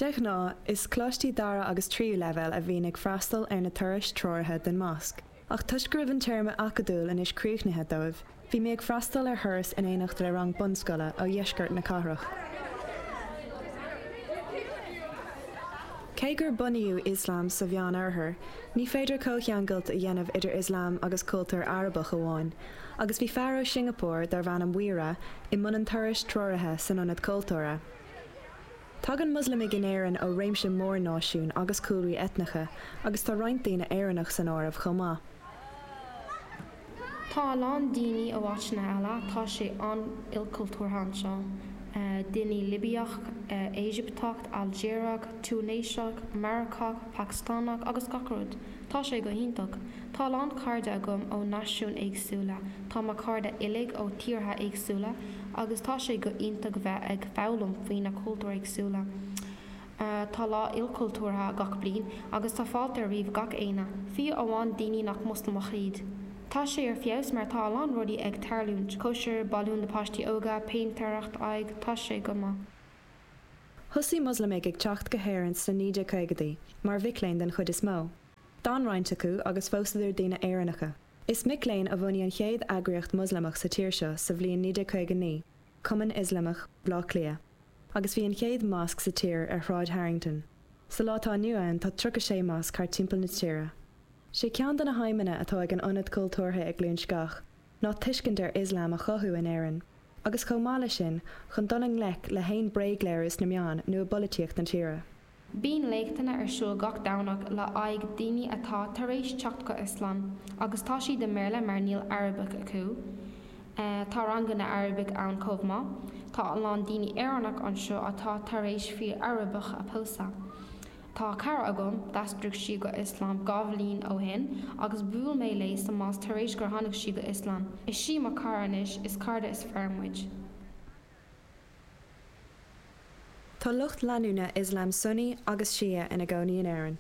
De ghnáth, is coláistí dara agus tríú leibhéal a bhíonn ag freastal ar na turais treoraithe den Mhosc, ach toisc go raibh an téarma acadúil anois críochnaithe dóibh, bhí mé ag freastal ar thuras in éineacht le rang bunscoile ó dheisceart na cathrach. Cé gur bunaíodh Ioslam sa Mheán-Oirthear, ní féidir comhcheangailt a dhéanamh idir Ioslam agus cultúr Arabach amháin, agus bhí fear ó Shingeapór darb ainm Mhuira i mbun an turais treoraithe san Ionad Cultúrtha. Tagann Moslamaigh in Éirinn ó réimse mór náisiún agus cúlraí eitneacha agus tá roinnt daoine Éireannach san áireamh chomh maith. Tá a lán daoine ó áiteanna eile, tá sé an-ilchultúrtha anseo, daoine Libiach, Éigipteach, Ailgéarach, Túinéiseach, Maracach, Pacastánach agus gach rud Tá sé go hiontach. Tá a lán cairde agam ó náisiúin éagsúla, tá mo chairde uilig ó thíortha éagsúla agus tá sé go hiontach bheith ag foghlaim faoi na cultúir éagsúla. Tá lá ilchultúrtha gach bliain agus tá fáilte roimh gach éinne, fiú amháin daoine nach Moslamach iad. Tá sé ar feabhas mar tá a lán rudaí ag tarlúint, cóisir, balúin do na páistí óga, péintéireacht, aghaidh, tá sé go maith. Thosaigh Moslamaigh ag teacht go hÉirinn sna 1950idí, mar mhic léinn den chuid is mó. D'fhan roinnt acu agus phósadar daoine Éireannacha. Is mic léinn a bhunaigh an chéad eagraíocht Mhoslamach sa tír seo sa bhliain 1959, Cumann Ioslamach Bhaile Átha Cliath, agus bhí an chéad mosc sa tír ar Shráid Harrington. Sa lá atá inniu ann tá 36 mosc thart timpeall na tíre. Sé ceann de na haidhmeanna atá ag an Ionad Cultúrtha i gCluain Sceach ná tuiscint ar Ioslam a chothú in Éirinn, agus chomh maith leis sin, chun dul i ngleic le haon bréagléiriú sna meáin nó i bpolaitíocht na tíre. Bíonn léachtanna ar siúl gach Domhnach le h-aghaidh daoine atá tar éis teacht go Ioslam agus tá siad i mBéarla mar níl Arabic acu. Tá ranganna Arabic ann chomh maith. Tá a lán daoine Éireannach anseo atá tar éis fir Arabacha a pósadh. Tá cara agam, d'aistrigh sí go Ioslam dhá bhliain ó shin agus bhuail mé léi sa mosc tar éis gur tháinig sí go Ioslam. Is sí mo cara anois, is cairde is fearr muid. Tá lucht leanúna Ioslam Sunni agus Shia ina gcónaí in Éirinn.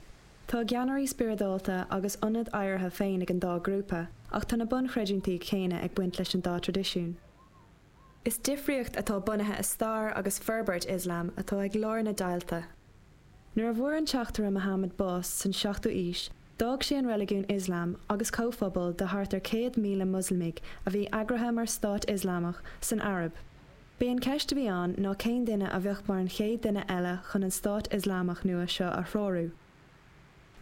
Tá a gceannairí spioradálta agus ionaid adhartha féin ag an dá ghrúpa, ach tá na bunchreidiúintí céanna ag baint leis an dá traidisiún. Is difríocht atá bunaithe i stair agus forbairt Ioslam atá ag lár na deighilte. Nuair a bhfuair an teachtaire Mohammed bás san 7ú aois, d'fhág sé an reiligiún Ioslam agus comhphobal de thart ar 100,000 Moslamaigh a bhí eagraithe mar stát Ioslamach san Araib. B'í an cheist a bhí ann ná cén duine a bheadh mar an chéad duine eile chun an stát Ioslamach nua seo a threorú.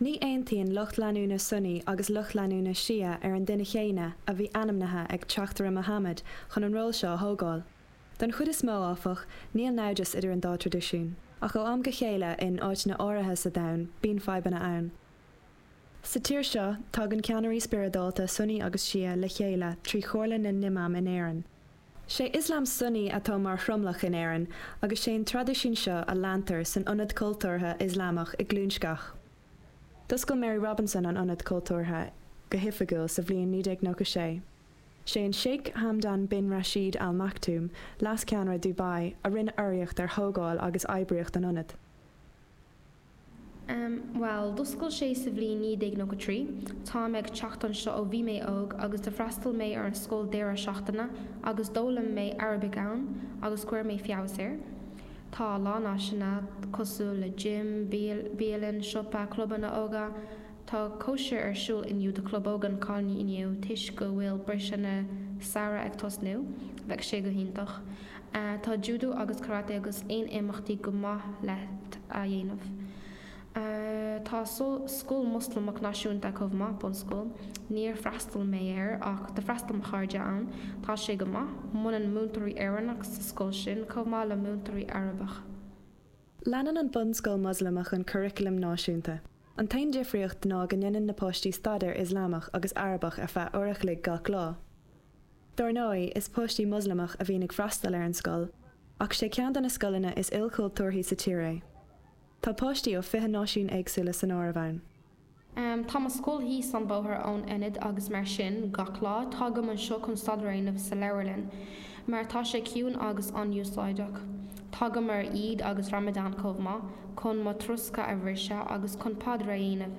Ní aontaíonn lucht leanúna Sunni agus lucht leanúna Shia ar an duine chéanna a bhí ainmnithe ag teachtaire Mohammad chun an ról seo a thógáil. Don chuid is mó, áfach, níl naimhdeas idir an dá traidisiún, ach ó am go chéile in áiteanna áirithe sa domhan bíonn fadhbanna ann. Sa tír seo, tagann ceannairí spioradálta Sunni agus Shia le chéile trí Chomhairle na nImam in Éirinn. Sé Ioslam Sunni atá mar thromlach in Éirinn agus sé an traidisiún seo a leantar san Ionad Cultúrtha Ioslamach i gCluain Sceach. D'oscail Mary Robinson an Ionad Cultúrtha go hoifigiúil sa bhliain 1996. Sé an Sheikh Hamdan bin Rashid Al Maktoum, leas-cheannaire Dubai, a rinne urraíocht ar thógáil agus oibríocht an Ionaid. Bhuel, d'oscail sé sa bhliain 1993. Táim ag teacht anseo ó bhí mé óg agus d'fhreastail mé ar an scoil deireadh seachtaine agus d'fhoghlaim mé Arabic ann agus cuir mé feabhas air. Tá a lán áiseanna cosúil le gym, bialann, siopa, clubanna óga, Tá cóisir ar siúl inniu do chlub óg na gcailíní toisc go bhfuil briseadh na samhradh ag tosnú. Beidh sé go hiontach. Tá judo agus karate agus aon imeachtaí go maith leat a dhéanamh. Tá scoil Moslamach náisiúnta chomh maith, bunscoil. Níor freastail mé air ach d'fhreastail mo chairde ann. Tá sé go maith. Múineann múinteoirí Éireannach sa scoil sin chomh maith le múinteoirí Arabach. Leanann an bunscoil Moslamach an curriculum náisiúnta. An t-aon difríocht ná go ndéanann na páistí staidéar Ioslamach agus Arabach ar feadh uair a chloig gach lá. Dar ndóigh, is páistí Moslamach a bhíonn ag freastal ar an scoil, ach sé ceann de na scoileanna is ilchultúrthaí sa tír é. Tá páistí ó fiche náisiún éagsúla san áireamh ann. Tá mo scoil thíos an bóthar ón Ionad agus mar sin, gach lá, tagaim anseo chun staidéar a dhéanamh sa leabharlann. Mar tá sé ciúin agus an-úsáideach. Tagaim ar Eid agus Ramadan chomh maith, chun mo throscadh a bhriseadh agus chun paidir a dhéanamh.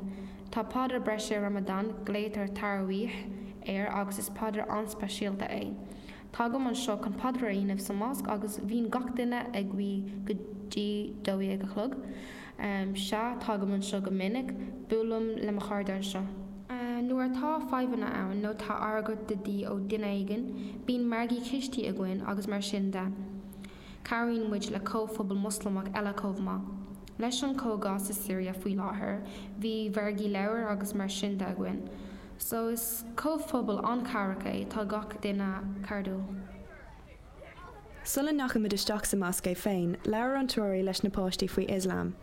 Tá paidir breise i Ramadan, glaoitear Taraweeh air agus is paidir an-speisialta é. Tagaim anseo chun paidir a dhéanamh sa mosc agus bhíonn gach duine ag guí go dtí dó dhéag a chlog. Sea, tagaim anseo go minic. Buailim le mo chairde anseo. Nuair atá fadhbanna ann nó tá airgead de dhíth ó dhuine éigin, bíonn margaí cístí againn agus mar sin de. Cabhraíonn muid le comhphobal Moslamach eile chomh maith. Leis an cogadh sa Siria faoi láthair, bhí mhargaí leabhair agus mar sin de againn. So is comhphobal an-chabhrach é, tá gach duine cairdiúil. Sula ndeachaigh muid isteach sa mosc é féin, labhair an treoraí leis na páistí faoi Ioslam.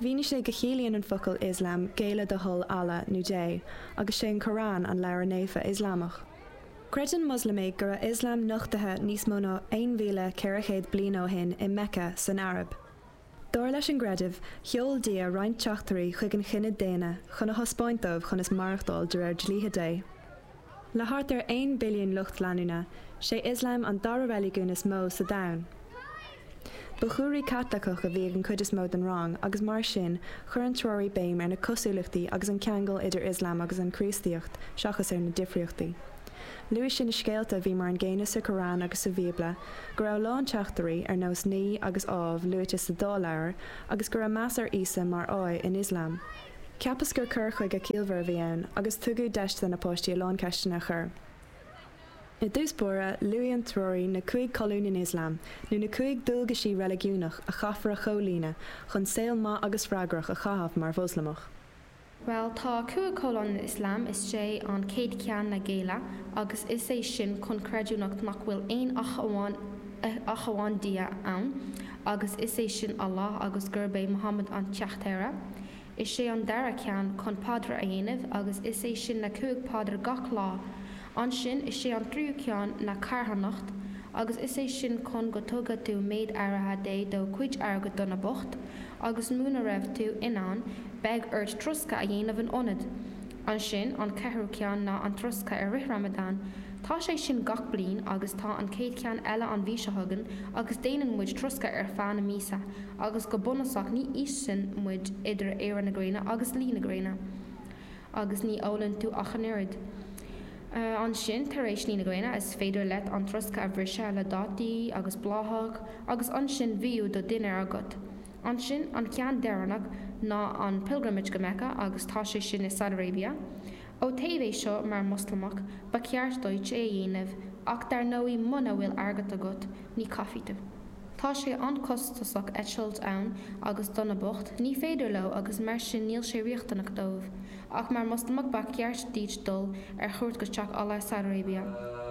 Mhínigh sé go chiallaíonn an focal Ioslam géilleadh do thoil Allah, nó Dé, agus sé an Corán an leabhar naofa Ioslamach. Creideann Moslamaigh go raibh Ioslam nochtaithe níos mó ná 1400 bliain ó shin i Meice, san Araib. Dar leis an gcreideamh, sheol Dia roinnt teachtairí chuig an chine daonna chun a thaispeáint dóibh conas maireachtáil de réir dlíthe Dé. Le thart ar aon billiún lucht leanúna, sé Ioslam an dara reiligiún is mó sa domhan. Ba chúlra Caitliceach a bhí ag an cuid is mó den rang agus mar sin, chuir an treoraí béim ar na cosúlachtaí agus an ceangal idir Ioslam agus an Chríostaíocht seachas ar na difríochtaí. Luaigh sí na scéalta a bhí mar an gcéanna sa Qur'an agus sa Bhíobla, go raibh a lán teachtairí, ar nós Naoi agus Ádhamh, luaite sa dá leabhar, agus go raibh meas ar Íosa mar fháidh in Ioslam. Cheapas gur cur chuige ciallmhar a bhí ann agus tugadh deis do na páistí a lán ceisteanna a chur. I dtús báire, luaigh an treoraí na cúig cholún in Ioslam, nó na cúig dualgaisí reiligiúnacha a chaithfear a chomhlíonadh chun saol maith agus freagrach a chaitheamh mar Mhoslamach. Bhuel tá cúig cholún in Ioslam, is é an chéad cheann ná géilleadh agus is é sin chun creidiúint nach bhfuil aon ach amháin ach amháin Dia ann agus is é sin Allah agus gurb é Muhammad an teachtaire, is é an dara ceann chun paidreacha a dhéanamh agus is é sin na cúig paidir gach lá Ansin is é an tríú ceann ná carthanacht, agus is é sin chun go dtugadh tú méid áirithe de do chuid airgid do na boicht, agus muna raibh tú in ann, beidh ort troscadh a dhéanamh in ionad. Ansin an ceathrú ceann ná an troscadh i rith Ramadan. Tá sé sin gach bliain agus tá an chéad cheann eile an mhí seo chugainn agus déanann muid troscadh ar feadh na míosa agus go bunúsach ní íosann muid idir éirí na gréine agus luí na gréine. agus ní ólann tú ach an oiread. Ansin, tar éis luí na gréine, is féidir leat an troscadh a bhriseadh le dátaí agus bláthach agus ansin bhíodh do dhinnéar agat. Ansin, an ceann deireanach ná an Pilgrimage go Mecca agus tá sé sin i Saudi Arabia. Ó taobh é seo, mar Mhoslamach, ba cheart duit é a dhéanamh ach dar ndóigh muna bhfuil airgead agat, ní chaithfidh tú. Tá sé an-chostasach eitilt ann agus do na boicht, ní féidir leo agus mar sin níl sé riachtanach dóibh. Ach mar Mhoslamach ba cheart duit dul ar chuairt go Teach Allah i Saudi Arabia.